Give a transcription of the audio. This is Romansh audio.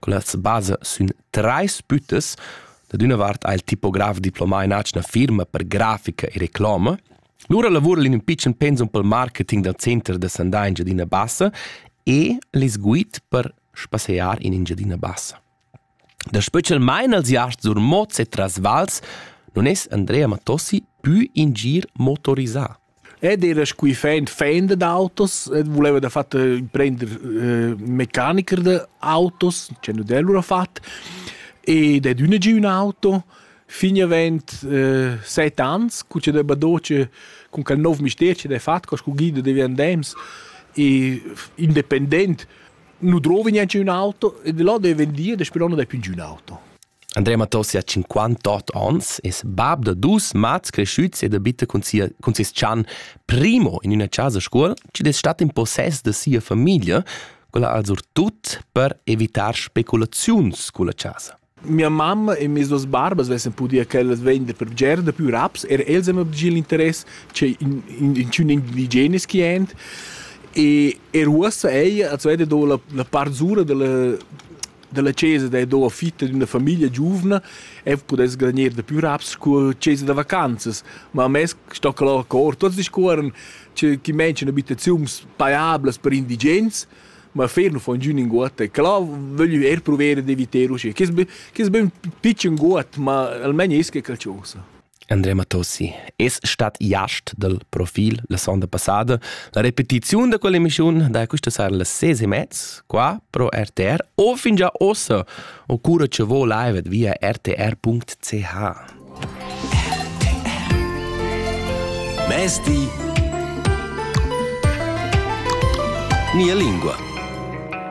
Quellas basa sün trais büttas. Da üna vart ha il tipograf diplomà in atgna firma per grafica e reclama. Lura lavura in ün pitschen pensum pel marketing dal Center da sandà in Giadina Bassa e les guid per spassear in Engiadina Bassa. Da specialmain als iasts sur mots e tras vals non es Andrea Matossi pü ingir motorisà. Ed era scu fend fender d'autos ed vuleva dafatta prender eh, mecanicher da autos, che nu d'el lura fat. Ed è düna gi ün auto fin avent eh, set ans, cu che deva doce cun quel nov mister che d'he fat, co scu guida devi andems e independent nu drovi neanche ün auto e da là deve dir da Spillona dai più giù un auto. Andrea Matossi ha 58 ans, es bab da dus mats cresciuts ed abita cun, sia, cun ses chan Primo in üna casa scuol, chi'd es stat in possess da sia famiglia, quella al surtut per evitar speculaziuns culla casa. Mia mamma e mes duas barbas vessen pudia quellas vender per bger da più raps, er els han obtgi l'interess, che in, in, inchün indigeneschi ent. E er uossa ella als veda do la, la part zura della, della chesa, da do fitta d'üna famiglia giuvna e pudess granir da più raps col chesa da vacanzas. Ma a mes sto que là cor, tots discuorren che chi mention abitaziuns paiablas per indigens, ma ferm fon giù in guot e cla vöglio eir pruver d'eviter uschè che es be che es be ün pitschen guot ma almain es que calciosa. Andrea Matossi es stat jast dal profil la sonda passada. La repetiziun da quell'emissiun da questa sera las ses e mezz qua pro RTR o fin già ossa o cura che vo live via rtr.ch. Mezdi Mia lingua